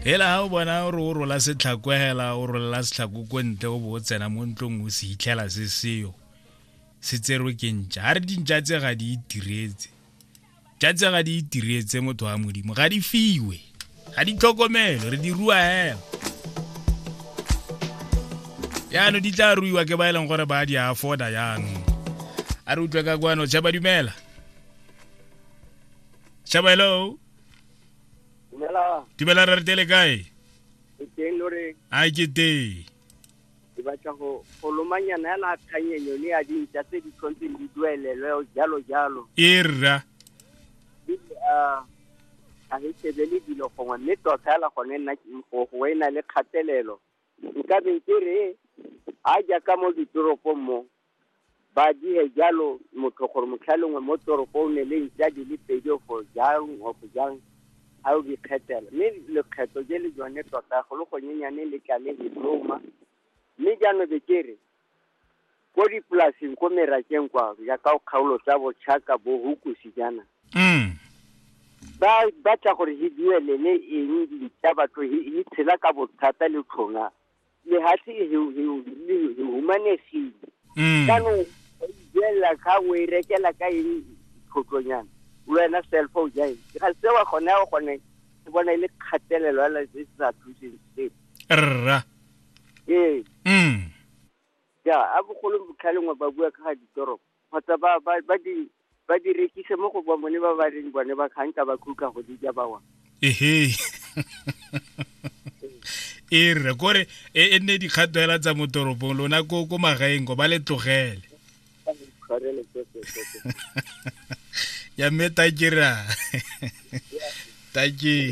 hela ga o bona o re o rola setlhako hela o rolela setlhako ko ntle o bo o tsena mo ntlong o se hitlhela se seyo se tserwe ke ntša ga re dintša tse ga di itiretse tša tse ga di itiretse motho wa modimo ga di fiwe ga di tlhokomelo re di rua hela yaano di tla ruiwa ke ba e leng gore ba di afforda yaanong a re utlwe ka kwano tšhaba dumela tšhaba hello Dumelang. dumela re retele kae Ke teng lo re a ke teng ke batla go go lomanyana yana kganyenyo le ya dintša tse di tshwantseng di duelelwe jalo jalo. e rra Di ah, ga re shebele dilo gongwe mme tota fela gone nna ke go go e na le kgatelelo. Nka be ke re a jaaka mo ditoropong mo Ba dire jalo motho gore motlha lengwe mo toropong ne le ntša di le pedi o fo jang o fo jang a o dikgethela mme lekgetho je le jone tota go le gonyenyane le tla le le loma mme jaanong be ke re ko dipolaseng ko merakeng kwa jaaka o kgaolo tsa bochaka bo hukusi jaana mm. ba batla gore he duelele eng dintša batho he tshela ka bothata le tlhonga lehathi e heo heo le le humanegile Mm. jaanong o ijelela kgang o e rekela ka eng tlhotlonyana wena cellphone ja eng ga sewa gone ya gone ke bona e le kgatelelo ya lase se sa thuseng sepe Rra. ee Mm. ja a bogolo botlhalengwe ba bua ka ga ditoropo kgotsa ba, ba, ba di, ba di rekise mo go ba bone ba ba reng bone ba kgang ka ba khutla go di ja bawa. Ehe. e re kore e, e nne dikgato hela tsa mo toropong lona ko ko magaeng ko ba le tlogele ya mme takera take